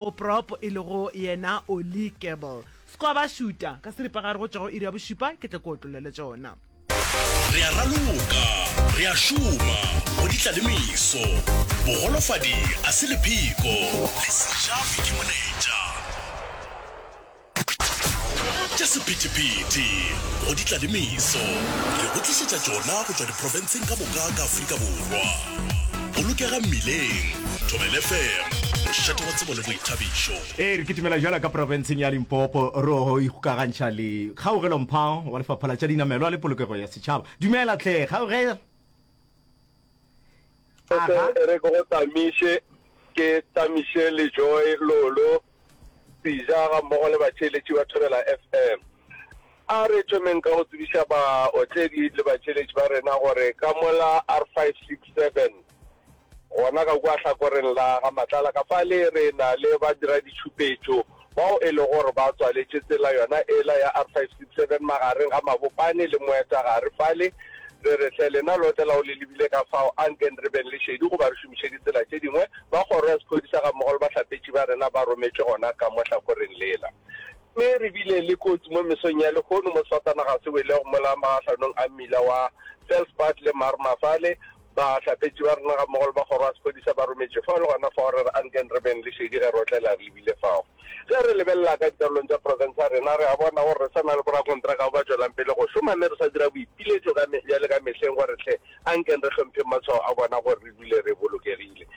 o prop e lego yena Oli Kerbel. Skwaba šuta ka seripagare go tšwa go iri ya bošupa ke tle ke otlolele tšona. Re a raloka, re a šoma go di tla le meso. Bogolofadi a se lepheko, le sejafi ke moletša. Tša sephethephethe go di tla le meso, re go tlišetša tšona go tšwa diprofenseng ka moka ka Afrika Borwa. Bolokega mmileng, Thobela FM, mošate wa tsebo le boithabišo. Ee, re kitimela bjalo ka profenseng ya Limpopo ro ikgokagantšha le kgaugelo-mphang wa Lefapha la tša Dinamelwa le Polokego ya Setšhaba. Dumela tlhe, kgaugelo. Aha. E re ke go tlamiše, ke tlamiše le Joy, Lolo, Pija ga mmogo le batšheletši ba Thobela FM. A re thomeng ka go tsebiša baotledi le batšheletši ba rena gore ka mola R567 gona ka kua hlakoreng la ga Matlala ka fale re na le badiraditšhupetšo bao e lego gore ba tswaletše tsela yona ela ya R567 magareng ga Mabopane le Moetagare fale, re re, Hle, lena lote lao le lebile ka fao, ankeng re beng le šedi goba re šomiše ditsela tše dingwe. Ba Kgoro ya Sephodisa gammogo le bahlapetši ba rena ba rometšwe gona ka mo hlakoreng lela. Mme re bile le kotsi mo mesong ya lehono mo sefatanaga se welego mola magahlonong a mmila wa Felspad le Marmar fale, Bahlapetši ba rena gammogo le ba kgoro ya sephodisa ba rometšwe fao le gona fao. Re re a nkeng re beng le šedi ge re otlela re lebile fao. Ge re lebelela ka dikarolong tša profense ya rena, re a bona gore re sa na le borakontraka bao ba tšwelang pele go šoma mme re sa dira boipiletšo ka mehla le ka mehleng gore hle a nkeng re hlompheng matshwao a bona gore re dule re bolokegile.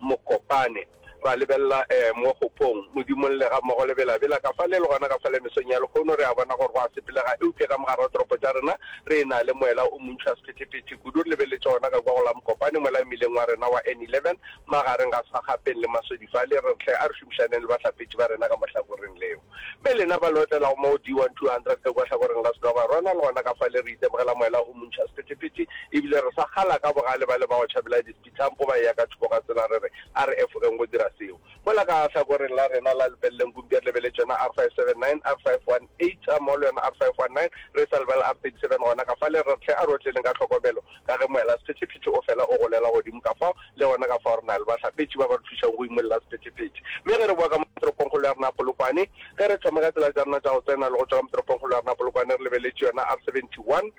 Mokopane, ra lebelela eh, mo kgopong, Modimong le ga mmogo le belabela, ka fale le gona ka fale mesong ya lekgono, re a bona gore go a sepelega, eupša ka mogare wa toropo tša rena re ena le moela o montši wa sephetephete kudu. Re lebeletše gona ka kua go la Mokopane, moela mmileng wa rena wa N11, magareng ga Sagapeng le Masodi fale, re re hle a re šomišaneng le bahlapetši ba rena ka mo hlakoreng leo. Mme lena ba le otlelago mo go D1200 le kua hlakoreng la Sedwaba, rona le gona ka fale re itemogela moela o montši wa sephetephete, ebile re sa kgala ka bogale ba le ba go tšhabela di dithampo ba eya ka thoko ga tsela, re re a re efogeng go dira seo. Mola ka hlakoreng la rena la lebeleleng Gumbier le be le tšona R579, R518, a Mall yona R519, re sa lebala R37 gona ka fale. Re re hle a re otleleng ka tlhokomelo ka ge moela sephethephethe o fela o golela godimo ka fao, le gona ka fao re na le bahlapetši ba ba re thušago go imolla sephethephethe. Mme ge re boa ka mo toropongkgolo ya rena ya Polokwane, ge re thoma ka tsela tša rena tša go tsena le go tšwa ka mo toropongkgolo ya rena ya Polokwane, re lebeletše yona R71,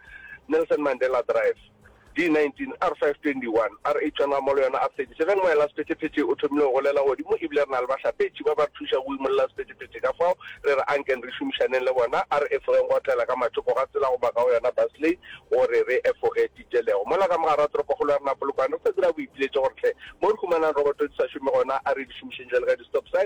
Nelson Mandela Drive. D19, R5, 21, R8, Tšwana Amolo yona R37, Moela Sephetephethe o thomile go golela godimo e bile re na le bahlapetši ba ba re thušago go imolla Sephetephethe ka fao re re ankeng re šomišaneng le bona, a re efogeng go otlela ka mathoko ga tsela goba ka go yona basley go re re efoge Titelego. Mola ka mogara toropokgolo ya rena Polokwane re sa dira boipiletšo gore hle mo re humanang roboto di sa šome gona a re di šomišeng bjalo ka di-stop sign,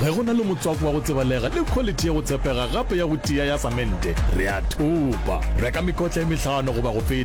Ge go na le motswako wa go tsebalega le khwaliti ya go tshepega gape ya go tia ya samente, re a thopa. Reka mekotla e mehlano goba go feta.